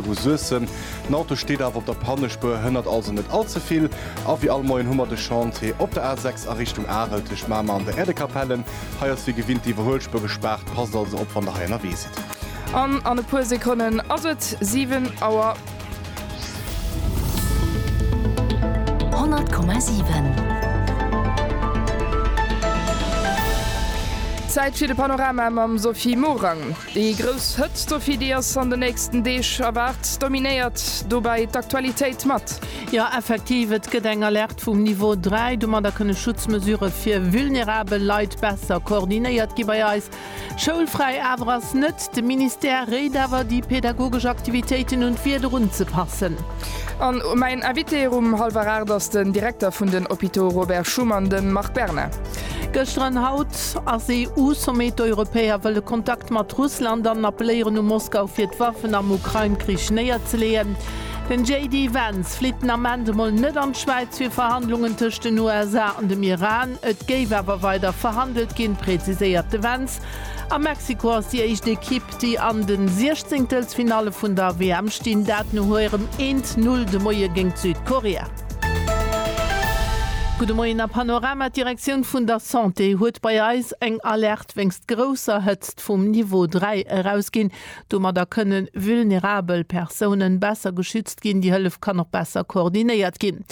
Vu Suessem. Den Auto steet awer op der Pannespuer, hënnert also net all ze vill. A wéi all Moien hu mer de Chantier op der A6 a Richtung Arel tëscht Mamer an der Äerdekapelle. Hei ass wéi gewinnt d'Iwwerhuelspuer gespaart, passt also op wann der hei ënnerwee sidd. An an e puer Sekonnen ass et 7 Auer. 100,7. Zäit fir de Panorama mam Sophie Morang. Déi grouss Hëtzt, op déi eis an de nächsten Deeg erwaart, dominéiert dobäi d'Aktualitéit mat. Jo, effektiv, et gëtt eng Alerte vum Niveau 3. Domadder kënne Schutzmesurë fir vulnerabel Leit besser koordinéiert gi bei eis. Schoulfräi awer ass net. De Ministère réit awer, déi pedagogesch Aktivitéiten un d'Wieder unzepassen. A mäin Invité um hallwer 8 ass den Direkter vun den Hôpitaux Robert Schuman, de Marc Berna. Gëschter an haut ass EU-Sommet, d'Europäer wëlle Kontakt mat Russland an appeléieren u Moskau fir d'Waffen am Ukrain-Krich néierzeleeën. Den JD Vance flitt den Ament emol net an d'Schwäiz fir Verhandlungen tëscht den USA an dem Iran. Et géif awer weider verhandelt ginn, präziséiert de Vance. A Mexiko ass déi éischt Ekipp, déi an de Siechzéngtelsfinalle vun der WM stinn, dat no hirem Eent-Null de Moie géint Südkorea. Gudde Moien a Panorama, D'Direktioun vun der Santé huet bei eis eng Alerte wéinst grousser Hëtzt vum Niveau 3 erausginn. Domadder kënne vulnerabel Persounen besser geschützt ginn. Déi Hëllef kann och besser koordinéiert ginn.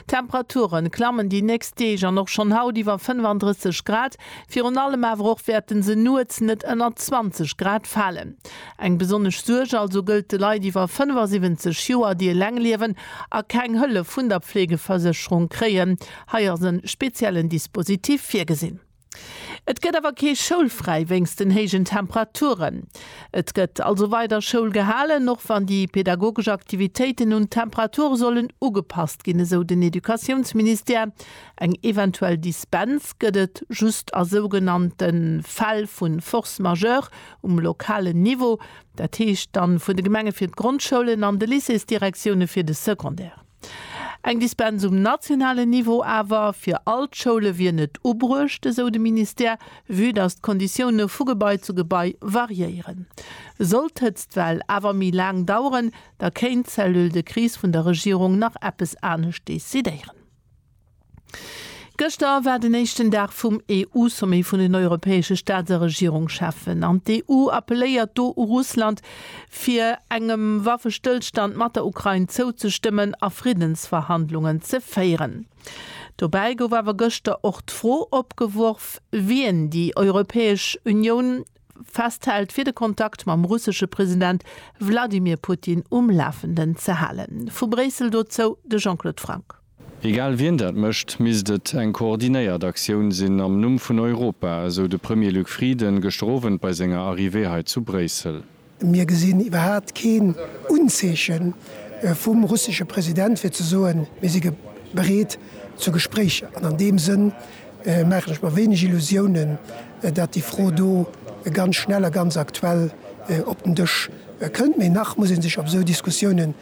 D'Temperature klammen déi nächst Deeg an och schonn haut iwwer 35 Grad. Virun allem awer och wäerte se nuets net ënner 20 Grad falen. Eng besonnesch Suerg also gëllt de Leit iwwer 75 Joer, déi eleng liewen a keng Hëllef vun der Pflegeversécherung kréien. Hei ass e speziellen Dispositif virgesinn. Et gëtt awer kee Schoulfräi wéinst den héijen Temperaturen. Et gëtt also weider Schoul gehalen, och wann déi pedagogesch Aktivitéiten un d'Temperature sollen ugepasst ginn, esou den Educatiounsministère. Eng eventuell Dispens gëtt et just a sougenannte Fäll vu Force majeure, um lokalen Niveau, dat heescht dann vun de Gemenge fir d'Grondschoulen an de Lycéesdirektioune fir de Secondaire. Eng Dispens um nationalen Niveau awer fir all d'Schoule wier net ubruecht, esou de Ministère. Vue datt d'Konditioune vu Gebai zu Gebai variéieren, sollt d'Hëtztwell awer méi laang daueren, da kéint d'Cellule de crise vun der Regierung nach eppes anescht decidéieren. Gëschter war den éischten Dag vum EU-Sommet vun den europäesche Staats a Regierungscheffen, an d'EU appelléiert do u Russland, fir engem Waffestëllstand mat der Ukrain zouzestëmmen a Friddensverhandlungen ze féieren. Dobäi gouf awer gëschter och d'Fro opgeworf, wien déi Europäesch Unioun festhält, fir de Kontakt mam russesche President Wladimir Putin um Lafenden ze halen. Vu Bréissel dozou de Jean-Claude Franck. Egal wien dat mécht, misst et eng koordinéiert Aktioun sinn am Numm vun Europa, esou de Premier Luc Frieden gëschter Owend bei senger Arrivée hei zu Bréissel. Mir gesinn iwwerhaapt keen Unzeeche vum russesche President fir ze soen, mir si bereet zu Gespréicher. An an deem Sënn maachen ech mer wéineg Illusiounen, datt déi Fro do ganz schnell a ganz aktuell op den Dësch kënnt. Mee nach muss ee sech op esou Diskussiounen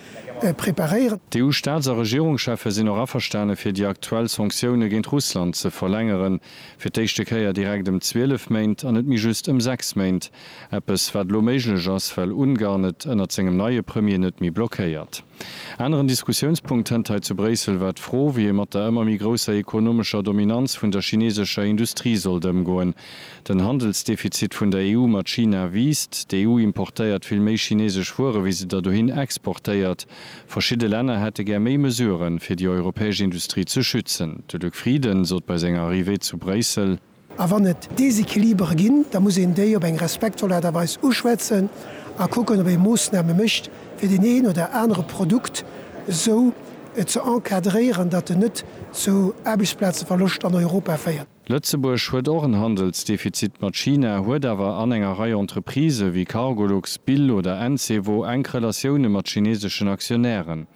preparéieren. D'EU-Staats a Regierungscheffe sinn och averstane fir déi aktuell Sanktioune géint Russland ze verlängeren, fir d'éischte Kéier direkt ëm 12 Méint an net méi just ëm 6 Méint. Eppes wat elo méiglech ass, well Ungarn et ënnert sengem neie Premier net méi blockéiert. Aneren Diskussiounspunkt hënt hei zu Bréissel war d'Fro, wéi ee mat der ëmmer méi grousser ekonomescher Dominanz vun der chinesescher Industrie sollt ëmgoen. Den Handelsdefizit vun der EU mat China wiisst. D'EU importéiert vill méi chinesesch Wuere wéi se der dohin exportéiert. Verschidde Länner hätte gär méi Mesuren, fir déi europäesch Industrie ze schützen. De Luc Frieden sot bei senger Arrivée zu Bréissel. A wann et Desequilibere ginn, da muss een déi op eng respektvoll Aart a Weis uschwätzen a kucken, ob ee Moossname mécht, fir deen een oder anere Produkt esou ze encadréieren, datt en net zu Aarbechtsplazeverloscht an Europa féiert. Lëtzebuerg huet och en Handelsdefizit mat China, huet awer an enger Rei Entreprisë wéi Cargolux, Bill oder Encevo enk Relatioune mat chineseschen Aktionären.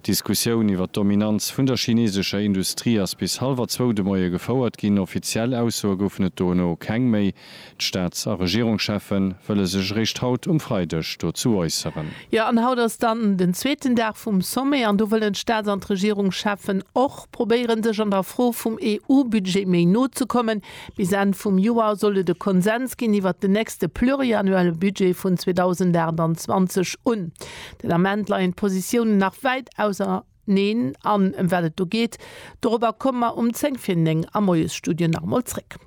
D'Diskussioun iwwer d'Dominanz vun der chinesescher Industrie ass bis hallwer zwou de Moie gefouert ginn, offiziell Aussoe goufen et dono keng méi. D'Staats a Regierungscheffe wëlle sech eréischt haut um Freideg dozou äusseren. Jo, an haut ass dann den zweeten Dag vum Sommet an do wëllen d'Staats an d'Regierungscheffen och probéieren, sech an der Fro vum EU-Budget méi no ze kommen. Bis Enn vum Joer soll et e Konsens ginn iwwert den nächste pluriannuelle Budget vun 2028 un. Den Ament leien d'Positiounen nach wäit auserneen. Neen, an ëm wat et do geet, dorobber komme mer um 10 vir 9 am Moiesstudio nach emol zréck.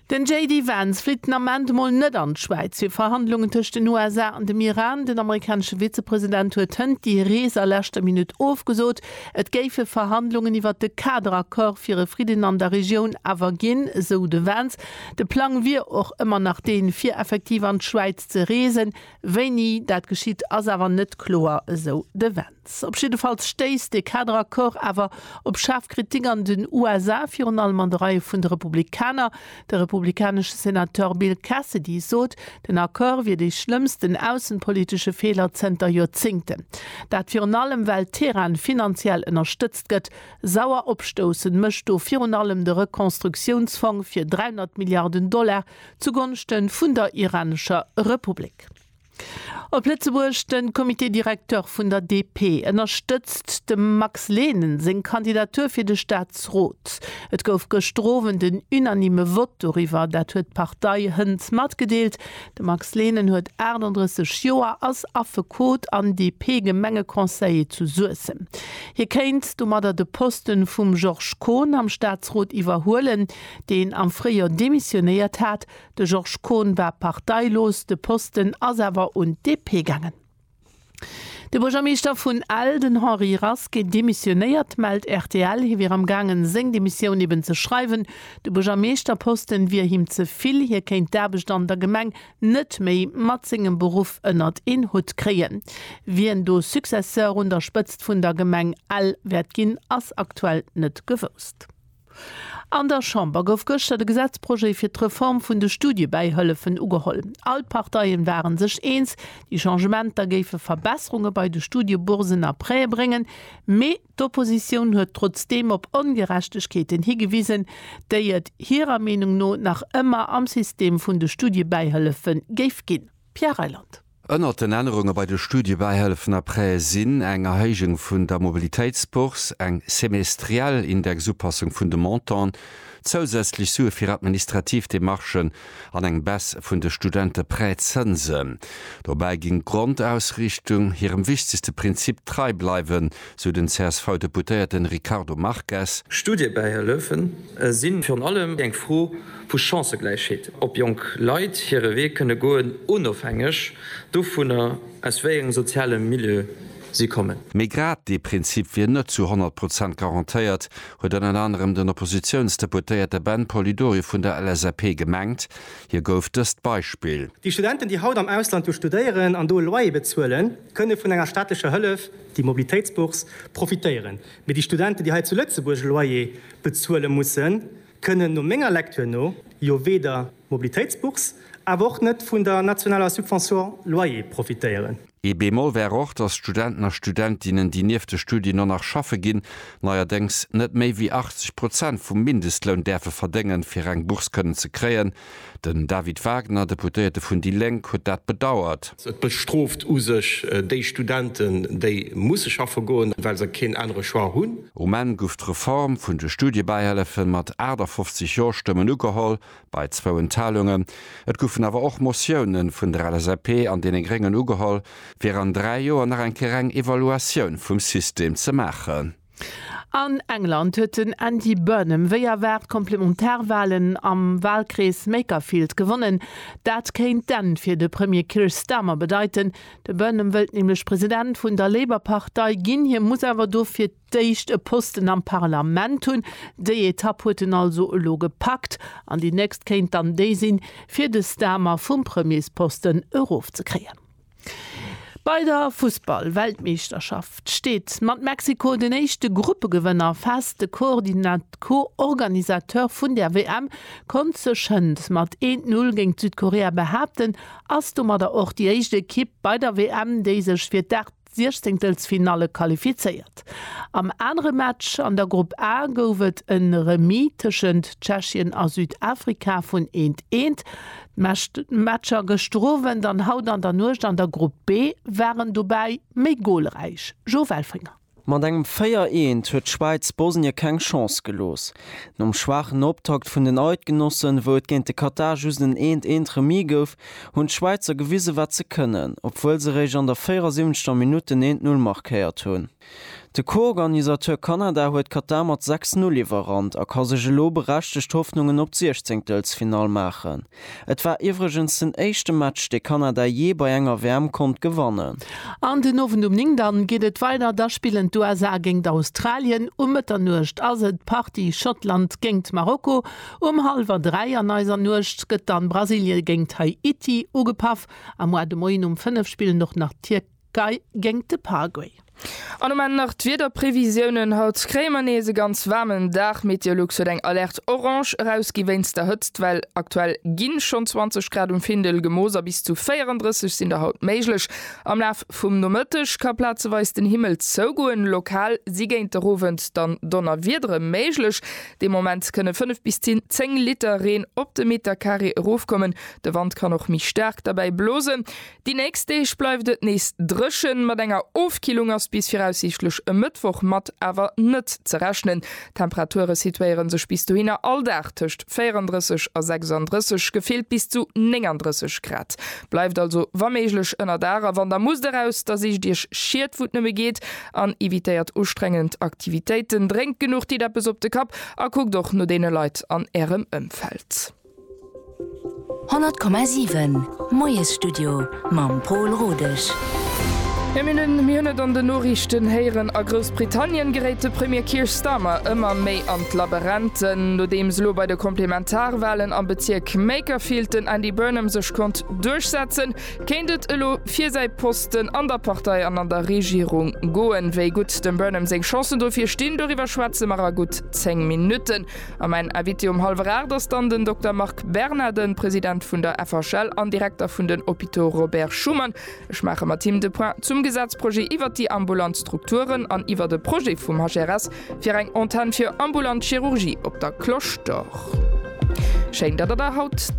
Den JD Vance flitt den Ament emol net an d'Schwäiz fir Verhandlungen tëscht den USA an dem Iran. Den amerikanesche Vizepresident huet hënt déi Rees a leschter Minutt ofgesot. Et géife Verhandlungen iwwert de Kaderaccord fir e Fridden an der Regioun awer ginn, esou de Vance. De Plang wier och ëmmer nach deen, fir effektiv an d'Schwäiz ze reesen, Wéini dat geschitt, ass awer net kloer, esou de Vance. Op jiddefalls stéisst de Kaderaccord awer op schaarf Kritik an den USA, virun allem an de Reie vun de Republikaner. De republikanesche Senateur Bill Cassidy sot, den Accord wier dee schlëmmsten aussenpolitesche Feeler zënter Joerzéngten. Dat virun allem, well Teheran finanziell ënnerstëtzt gëtt. Sauer opstoussen mécht do virun allem de Rekonstruktiounsfong fir 300 Milliarden Dollar, zugonschten vun der iranescher Republik. Op Lëtzebuerg, den Comité directeur vun der DP ënnerstëtzt dem Max Lehnen seng Kandidatur fir de Staatsrot. Et gouf gëschter Owend en unanime Vott doriwwer, dat huet d'Partei hënt matgedeelt. De Max Lehnen huet 38 Joer, ass Affekot an DP-Gemengeconseiller zu Suessem. Hie kéint domadder de Posten vum Georges Kohn am Staatsrot iwwerhuelen. deen am Fréijoer demissionéiert hat. De Georges Kohn war parteilos, de Posten ass awer un d'DP gaangen. De Buergermeeschter vun Ell, den Henri Rasqué, demissionéiert, mellt rtl. Hie wier am gaangen, seng Demissioun eben ze schreiwen. De Buergermeeschterposten wier him ze vill, hie kéint d'Aarbecht an der Gemeng net méi mat sengem Beruff ënnert een Hutt kréien. Wien do Successeur un der Spëtzt vun der Gemeng Ell wäert ginn, ass aktuell net gewousst. An der Chamber gouf gëschter de Gesetzprojet fir d'Reform vun de Studiebäihëllefen ugeholl. All d'Parteien ware sech eens, déi Changementer géife Verbesserunge bei de Studieboursen a Prêtë bréngen, mee d'Oppositioun huet trotzdeem op Ongerechtegkeeten higewisen, déi et hirer Meenung no nach ëmmer am System vun de Studiebäihëllefe géif ginn. Pierre Reyland. Ënnert den Ännerunge bei de Studiebäihëllefen après sinn eng Erhéijung vun der Mobilitéitsbourse, eng semestriell Indexupassung vun de Montanten, zousätzlech Sue fir administrativ Demarchen an eng Baisse vun de Studenteprêtszënsen dobäi ginn. Grondausrichtung, Hirem wichtegste Prinzip trei bleiwen, sou den CSV-Deputéierten Ricardo Marques. Studiebäihëllefen sinn virun allem eng Fro vu Chancëgläichheet, ob jonk Leit hire Wee kënne goen, onofhängeg dovunner, aus wéi engem soziale Milieu si kommen. Mee grad dee Prinzip wier net zu 100 Prozent garantéiert, huet ënner anerem den Oppositiounsdeputéierte Ben Polidori vun der LSAP gemengt. Hie gouf dëst Beispill. Déi Studenten, déi haut am Ausland jo studéieren an do e Loyer bezuelen, kënne vun enger staatlecher Hëllef, déi Mobilitéitsbourse, profitéieren. Mee déi Studenten, déi hei zu Lëtzebuerg e Loyer bezuele mussen, kënnen no menger Lektür no jo weder Mobilitéitsbourse awer och net vun der nationaler Subvention loyer profitéieren. Ee Bémol wär och, dass d'Studenten a Studentinnen, déi nieft de Studien och nach schaffe ginn, neierdéngs net méi wéi 80 Prozent vum Mindestloun däerfe verdéngen, fir eng Bourse kënnen ze kréien. Den David Wagner, Deputéierte vun déi Lénk, huet dat bedauert. Et bestrooft u sech déi Studenten, déi musse schaffe goen, well se keen anere Choix hunn. Um Enn guff d'Reform vun de Studiebäihëllefen mat 58 Jo-Stëmmen ugeholl, bei zwou Enthalungen. Et guffen awer och Motiounen vun der LSAP an deene Gréngen ugeholl, fir an dräi Joer nach eng Kéier eng Evaluatioun vum System ze maachen. An England huet den Andy Burnham wéi erwaart d'Komplementarwalen am Walkrees Makerfield gewonnen. Dat kéint d'Enn fir de Premier Keir Starmer bedeiten. De Burnham wëllt nämlech President vun der Labour-Partei ginn. Hie muss awer dofir d'éischt e Posten am Parlament hunn. Déi Etapp huet en also elo gepackt an déi nächst kéint dann déi sinn, fir de Starmer vum Premiersposten erofzekréien. Bei der Fussball-Weltmeeschterschaft steet mat Mexiko den éischte Gruppegewënner fest. De Co-Organisateur vun der WM konnt sech hënt mat 1-0 géint Südkorea behaapten, ass domadder och déi éischt Ekipp bei der WM, déi sech fir d'Aart Siechzehntelfinalle qualifizéiert. Am anere Match an der Grupp A gouf et e Remis tëschent Tschechien a Südafrika vun eent, eent. Meescht Matcher gëschter Owend an haut an der Nuecht an der Grupp B waren dobäi méi golräich. Joe Welfringer. Mat engem 4 Eent huet d'Schwäiz Bosnien keng Chance gelooss. Nom schwaachen Optakt vun den Eidgenossen, wou et géint de Katar just en Eent Eent Remis gouf, hunn d'Schwäizer gewisen, wat se kënnen, obwuel se réischt an der 74. Minutt den Eent Null markéiert hunn. De Co-Organisateur Kanada huet Katar mat 6, 0 iwwerrannt a ka sech elo berechtegt Hoffnungen op d'Siechzéngtelsfinall maachen. Et war iwwregens den éischte Match, dee Kanada jee bei enger WM konnt gewannen. An den Owend um 9 dann geet et weider, da spillen d'USA géingt Australien, um Mëtternuecht ass et d'Partie Schottland géingt Marokko, um hallwer 3 an eiser Nuecht gëtt dann Brasilien géingt Haiti ugepaff a moar de Moien um 5 spillen och nach d'Tierkei. Guy géingt de Paraguay. An um Enn nach d'Wiederprevisiounen, Haut kréie mer nees e ganz waarmen Dag. Meteolux huet eng Alerte orange erausgi wéinst der Hëtztwell. Aktuell gi schonn 20 Grad um Findel gemooss a bis zu 34 sinn der haut méiglech. Am Laf vum Nomëtteg ka plazeweis den Himmel zougoen, lokal si géint der Owend dann Donnerwiedere méiglech. De Moment kënne 5 bis 10 Liter Reen op de Metercarré erofkommen. De Wand kann och méi staark derbäi blosen. Déi nächst Deeg bleift et nees dréchen, mat enger Ofkillung ass bis viraussiichtlech e Mëttwoch mat awer net ze rechnen. D'Temperature situéiere sech bis dohinner all Dag tëscht 34 a 36, gefillt bis zu 39 Grad. Bleift also wa méiglech ënner Dag a wann der musst eraus, da sicht iech Schied wou et nëmme geet an evitéiert ustrengend Aktivitéiten. Drénkt genuch, ditt eppes op de Kapp a kuckt och no deene Leit an ärem Ëmfeld. 100,7 Moiesstudio mam Pol Rodesch. Jo mir hunn mir hunn et an den Noriichten héieren, a Groussbritannien geréit de Premier Keir Starmer ëmmer méi an d'Laberenten. Nodeems elo bei de Komplementarwalen am Bezierk Makerfield den Andy Burnham sech konnt duerchsetzen, kéint et elo fir säi Posten an der Partei an an der Regierung goen. Wéi gutt dem Burnham seng Chancen dofir stinn, doriwwer schwätze mer a gutt 10 Minutten. A mäin Invité um hallwer aacht ass dann den Dokter Marc Berna, de President vun der FHL an Direkter vun den Hôpitaux Robert Schuman. Ech maache mat him de Point zum Gesetzprojet iwwert déi ambulant Strukturen an iwwert e Projet vum HRS fir eng Antenn fir ambulant Chirurgie op der Cloche d'Or. Schéin, datt Der der haut.